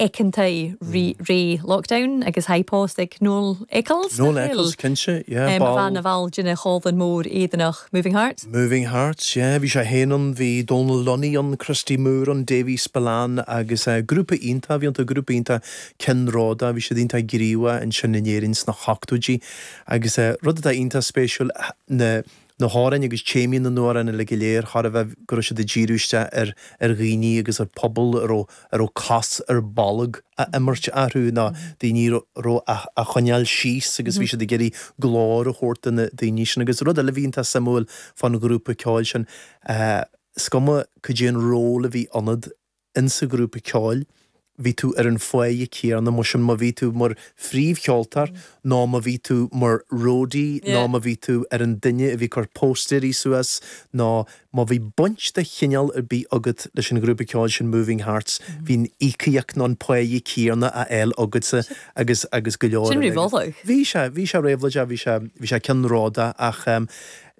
aice ann an ré lockdown agus i pòsta aig Noel Eccles. Noel Eccles, cinnte, yeah, ball. Bha e na bhall dhen chòmhlan mhòr Èireannach, Moving Hearts? Moving Hearts, yeah, bhí sé féin ann, bhí Donal Lunny ann, Christy Moore ann, Davy Spillane agus eh grúpa iontach a bhí iontu, grúpa iontach ceannródaíoch, bhí siad iontach gníomhach ansin in Éirinn sna hochtóidí agus eh rud atá iontach spéisiúil ná, na hamhráin agus téamaí na n-amhrán uilig go léir thar a bheith, go raibh siad ag díriú isteach ar ar dhaoine agus ar phobal a raibh a raibh cos ar bolg á imirt orthu nó daoine a raibh á, á gcoinneáil síos agus bhí siad ag iarraidh glór a thabhairt do na daoine sin agus rud eile a bhí iontach suimiúil fán ghrúpa ceoil sin eh is cuma cad é an ról a bhí ionat insa ghrúpa ceoil, bhí tú ar an pháighe céanna mar sin má bhí tú mar phríomhcheoltóir nó má bhí tú mar roadie nó má bhí tú ar an duine a bhí ag cur póstaeirí suas nó má bhí baint de chineál ar bith agat leis an ghrúpa ceoil sin Moving Hearts, bhí an íocaíocht nó an páighe céanna á fháil agatsa agus, agus go leor eile. Sin réabhlóideach. Bhí sé, bhí sé réabhlóideach, bhí sé, bhí sé ceannródaíoch eh.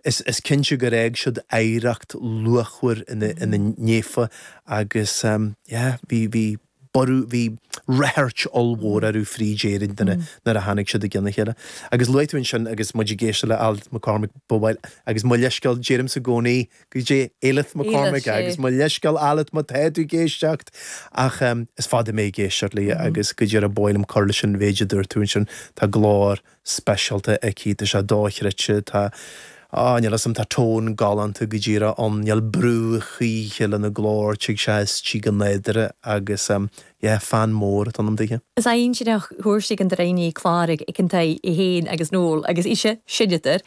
Is cinnte gur fhág siad oidhreacht luachmhar ina ndiaidh agus bhí borradh, bhí ráchairt ollmhór orthu fríd Éirinn nuair a tháinig siad i gcionn a chéile. Agus luaigh tú ansin, agus muid ag éisteacht le Alyth McCormack, ba mhaith liom, agus mo leithscéal, deirimse i gcónaí go dtí Alyth McCormack, agus mo leithscéal Alyth má tá tú ag éisteacht, ach is fada mé ag éisteacht léi agus go díreach ba mhaith liom cur leis an mhéid a dúirt tú ansin, tá glór speisialta aici. Tá sé dochreidte. Tá, á, níl 'fhios a'm, tá tone galánta go díreach ann. Níl brú choíche lena glór. Tig sé aisti go nádúrtha agus ehm, yeah, fan mór atá ionam daoithe. Is ainsineach, thuirsigh an droighne, clàraich aig an taigh fhèin agus Noel agus ise, sin an tiotal.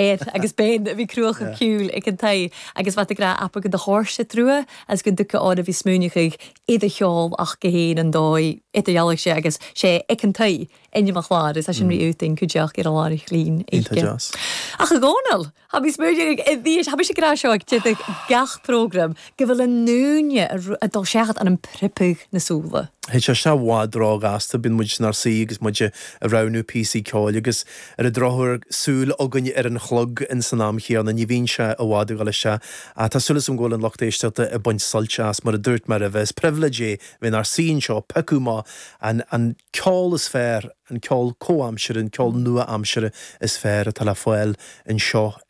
air agus bean a bhí cruach ar shiúl ag an tae agus bhean ag rá appa go do shóirse trua as go dtuigfeadh ár a bhí smúineachaigh iad a cheol ach go héin an dóigh ata dhealbhaigh sé agus sé ag an tae ainm an chláir agus tá sin rí iúd in cuideacht ar a lán chlaínn oíche ach a Dhomhnaill, tha bhí smúineachaigh i bhíos tha bhí sé grá seo ag tiubh gach program gu bheil an ùine a' dol seachad ann am priobadh na sùla. Théid sé i bhfad róghasta, bíonn muid inár suí agus muid a roghnú píosaí ceoil agus ar an drochuair súil againn ar an chlog insan am chéanna, ní bhíonn sé i bhfad ag dul isteach. Ach tá súil agam go bhfuil an lucht éisteachta ag baint suilt as, mar a dúirt mé roimhe, is pribhléid é bheith inár suí anseo ag piocadh amach an an ceol is fearr, an ceol comhaimseartha, an ceol nua-aimseartha is fearr atá le fáil anseo i.